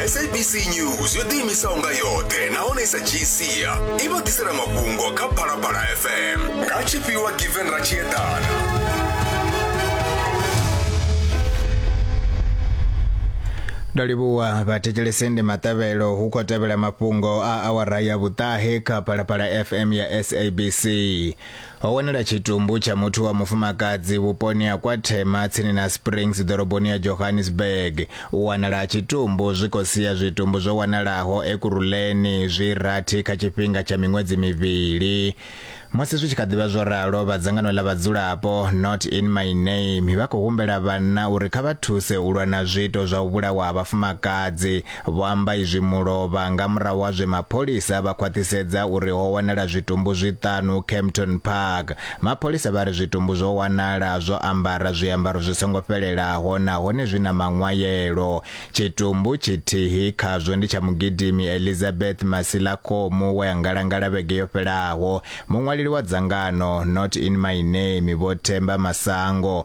sabc news yo ḓiimisaho nga yoṱhe nahone i sa dzhii sia i vha ḓisela mafhungo kha phalaphala fm nga tshifhiwa given ra tshi eḓana ndo livhuwa vhathetshelesi ndi maṱavhelo hu khou tevhela mafhungo a awara ya vhuṱahe kha phalaphala fm ya sabc ho wanala tshitumbu tsha muthu wa mufumakadzi vhuponi ha kwa Thema tsini na Springs ḓoroboni ya Johannesburg. U wanala ha tshitumbu zwi khou sia zwitumbu zwo wanalaho Ekurhuleni zwi rathi kha tshifhinga tsha miṅwedzi mivhili. Musi zwi tshi kha ḓivha zwo ralo, vha dzangano ḽa vhadzulapo Not in my name vha khou humbela vhanna uri kha vha thuse u lwa na zwiito zwa u vhulawa ha vhafumakadzi Vho amba izwi mulovha nga murahu ha zwe mapholisa vha khwaṱhisedza uri ho wanala zwitumbu zwiṱanu Kempton Park. Mapholisa vha ri zwitumbu zwo wanala zwo ambara zwiambaro zwi songo fhelelaho nahone zwi na maṅwayelo. Tshitumbu tshithihi khazwo ndi tsha mugidimi Elizabeth Masilakhomu we a ngalangala vhege yo fhelaho. Muṅwaleli wa dzangano Not In My Name Vho Themba Masango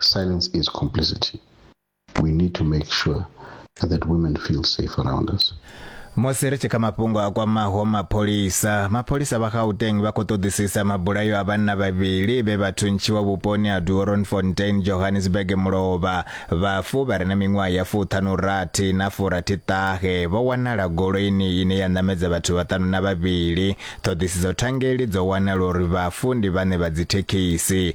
Silence is complicity. We need to make sure that women feel safe around us. musi ri tshi kha mafhungo a kwamaho mapholisa mapholisa vha gauteng vha khou ṱoḓisisa mabulayo a vhanna vhavhili vhe vha thuntshiwa vhuponi ha duoronfontein johannesburg mulovha vhafu vha re na miṅwaha ya fuṱhanurathi na furathiṱahe vho wanala goloini ine ya ṋamedza vhathu vhaṱanu na vhavhili ṱhoḓisiso thangeli dzo wanala uri vhafu ndi vhane vha dzithekhisi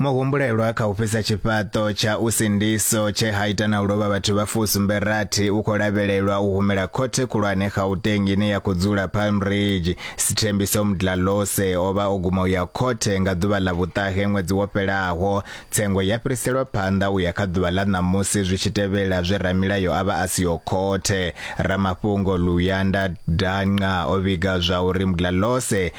Muhumbulelwa kha u fhisa tshifhaṱo tsha u sindiso tshe ha ita na u lovha vhathu vha fusumbe rathi u khou lavhelelwa u humela khothe khulwane Gauteng ine ya khou dzula Palm Ridge. Sithembiso Mdlalose o vha o guma u ya khothe nga ḓuvha ḽa vhuṱahe ṅwedzi wo fhelaho. Tsengo ya fhiriselwa phanḓa u ya kha ḓuvha ḽa ṋamusi zwi tshi tevhela zwe ramilayo a vha a siho khothe. Ramafhungo Luyanda Danqa o vhiga zwa uri Mdlalose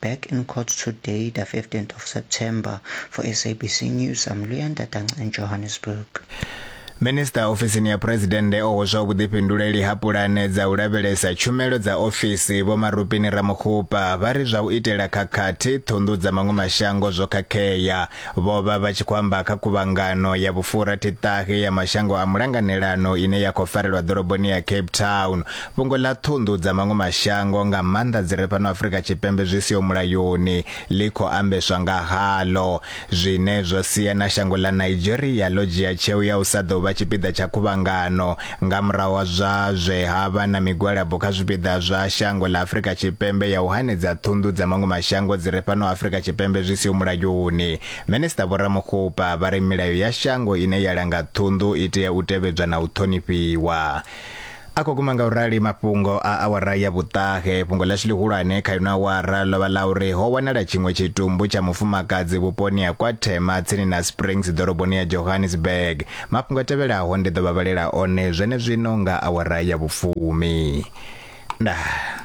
Back in court today, the 15th of September, for SABC News, I'm Luyan Datang in Johannesburg. Minista ofisini ya Phresidennde o hweswa vhuḓifhinduleli ha pulane dza u lavhelesa tshumelo dza ofisi Vho Marupini Ramokgopa vha ri zwa u itela khakhathi ṱhunḓu dza maṅwe mashango zwo khakhea. Vho vha vha tshi khou amba kha khuvhangano ya vhufurathi-ṱahe ya mashango a mulanganelano ine ya khou farelwa ḓoroboni ya Cape Town. Fhungo ḽa ṱhunḓu dza maṅwe mashango, nga maanḓa dzi re fhano Afrika Tshipembe zwi siho mulayoni, ḽi khou ambeswa nga haḽo, zwine zwo sia na shango ḽa Nigeria ḽo dzhia tsheo ya u sa ḓo vha tshipiḓa tsha khuvhangano Nga murahu ha zwa zwe ha vha na migwalabo kha zwipiḓa zwa shango ḽa Afrika Tshipembe ya u hanedza ṱhunḓu dza maṅwe mashango dzi re fhano Afrika Tshipembe zwi siho mulayoni, Minisṱa Vho Ramokgopa vha ri milayo ya shango ine ya langa ṱhunḓu i tea u tevhedzwa na u ṱhonifhiwa. A khou guma nga u rali mafhungo a awara ya vhuṱahe. Fhungo ḽashu ḽihulwane kha ino awara ḽo vha ḽa uri ho wanala tshiṅwe tshitumbu tsha mufumakadzi vhuponi ha Kwa Thema tsini na Springs ḓoroboni ya Johannesburg. Mafhungo a tevhelaho ndi ḓo vha vhalela one zwenezwino nga awara ya vhufumi. Ndaa.